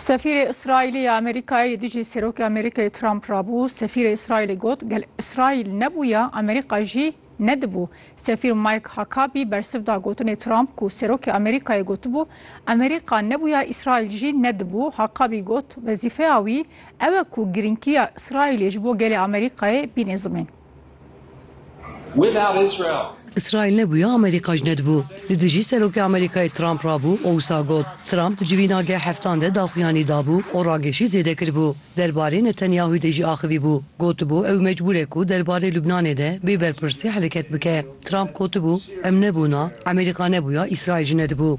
Sefîrê Îsraîlî ya Amerîkayê li dijî Serokê Amerîkayê Trump re bû. Sefîrê Îsraîlê got, gel Îsraîl nebûya Amerîka jî nedibû. Sefîr Mike Huckabee bersiv da gotinê Trump ku Serokê Amerîkayê gotibû, Amerîka nebûya Îsraîl jî nedibû. Huckabee got, Wezîfeya wî ew e ku girînkiya Îsraîlê ji bo gelê Amerîkayê bînê zimên. Îsraîl nebûye Amerîka jî nedibû. Li dijî Serokê Amerîkayê Trump re bû û wisa got, Trump di civîna geh heftan de daxuyanî dabû û ragêşî zêde kiribû. Derbarê Netanyahûyê de jî axivîbû. Gotibû ew mecbûr e ku derbarê Lubnanê de bê berpirsî hereket bike. Trump gotibû, Em nebûna, Amerîka nebûya Îsraîl jî nedibû.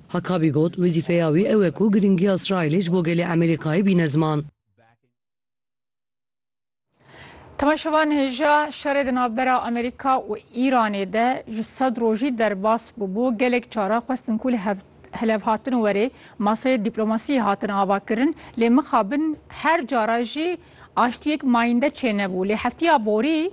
Hakabî got, Wezîfeya wî ew e ku girîngiya Îsraîlê ji bo gelê Amerîkayê bîne ziman. Temaşevan hêja şerê di navbera Amerîka û Îranê de ji sed rojî derbas bûbû, gelek caran xwestin ku li hev hilevhatin werê maseyê dîplomasiyê hatin avakirin lê mixabin her cara jî aştiyek mayînde çênebû lê heftiya borî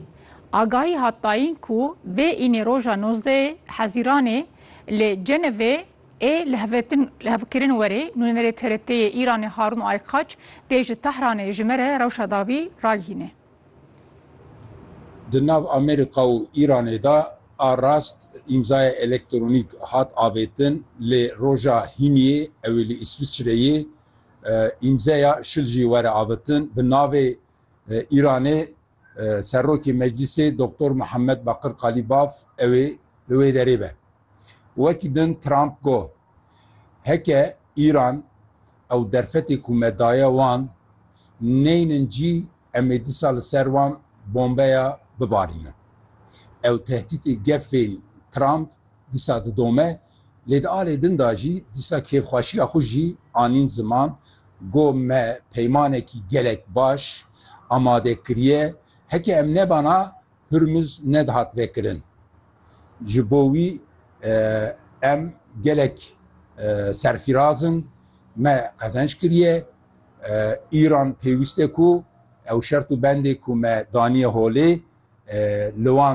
agahî hat dayîn ku vê înê roja nozdeyê hezîranê Li Cenevê ê li hevtin li hevkirin werê nûnerê TRT'ê yê Îranê Harûn Aykaç dê ji Tehranê ji me re rewşa dawî ragihîne. Di nav Amerîka û Îranê de a rast îmzaya elektronîk hat avêtin lê roja hîniyê ew ê li Îsviçreyê îmzeya şil jî were avitin bi navê Îranê Serokê Meclîsê Doktor Muhammed Bakir Kalîbaf ew ê li wê derê be. Wekî din Trump got, Heke Îran ew derfetê ku me daye wan neynin cî em ê disa li ser wan bombeya bibarînin. Ew tehdîtê gefên Trump Dîsa didome, lê di alê din de jî dîsa kêfxweşiya xwe jî anîn ziman ku me peymanekî gelek baş amade kiriye, heke em nebana Hurmuz nedihat vekirin. Ji bo wî em gelek serfîraz in, me qezenç kiriye. Îran pêwîst e ku ew şert û bendê ku me daniye holê li wan